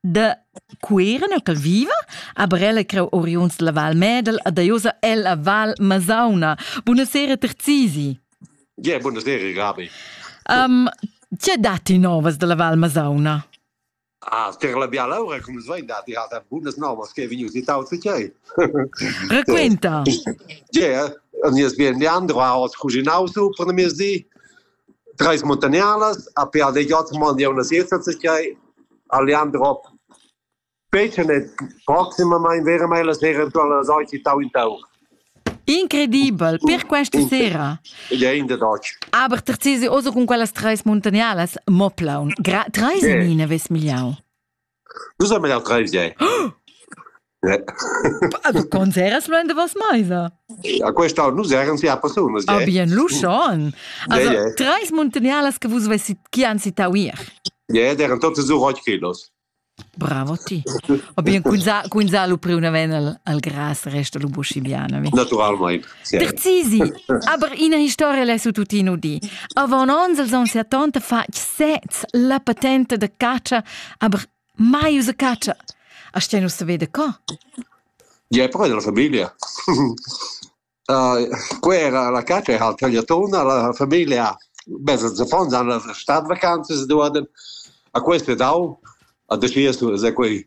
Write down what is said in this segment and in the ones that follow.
da Cuira nua ch'el viva, aber ella creu oriunds dalla Val Medel e daiosa ella Val Masauna. Buonasera Terzisi. Yeah, buonasera Gabi. Um, tge datti novas dalla Val Masauna? Ah, per la bialaura, come svein dati, ha bunas novas che vegnius di tauzi tgei. Raquenta. Yeah, nies bien Leandro ha os cuginau su per miezdi. Trais muntagnardas, a PADJ mandiauna siesa tschai, a Leandro fecen e proximamain veramain la sera entuorn las oit in tau in tau. Incredibel, per questa sera. Ja, in der Deutsch. Aber terzesi oso con quellas treis muntagnardas, mo plaun. Gra treis yeah. en ina ves migliau. Nus haben ja drei viei. Aber conservas lu en davos meisa? A questa nus eran sia personas. Ah, bien, lu schon. Also, yeah, yeah. treis muntagnarlas che vus vessit, chi han citau ier. Yeah, eran totes sur ocht kilos. Bravo ti. O bien, cun sa, cun sa lu pri una ven al, al gras resta lu buschibiana. Naturalmein. Terzisi, aber ina historia l'è su tuttina udì. Avant onns els han setanta fatg sez la patente da caccia, aber mai usa caccia. A ste nus vede co? Ja, è proprio della famiglia. uh, quella la caccia è al tagliatona, la famiglia mezza Giappone hanno la stadvacanze due a questo è dau a deciso se quei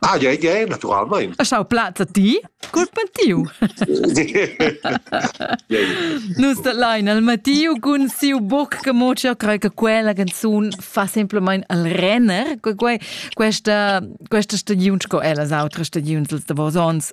Ah, ja, ja, naturalmein. E schau plazza ti cul patiu. Nus dat lein al Mattiu cun siu boc che mo io crei che quella canzun fa semplament al renner, che quei questa questa stagiun sco ellas autres stagiuns da vos ons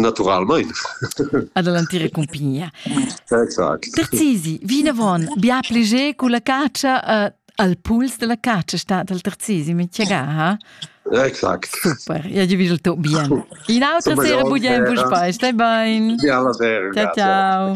Naturalmein. Ad l'entira cumpignia. Exact. Terzisi, vinavon, bia pli cu la cacia uh, al puls della cacia sta dal Terzisi, mi tgega, ha? Exact. Super, ja ti vis il tuo bien. In autra sera bugliamo un spaes, stai bene. Ja, la sera. Ciao, ciao.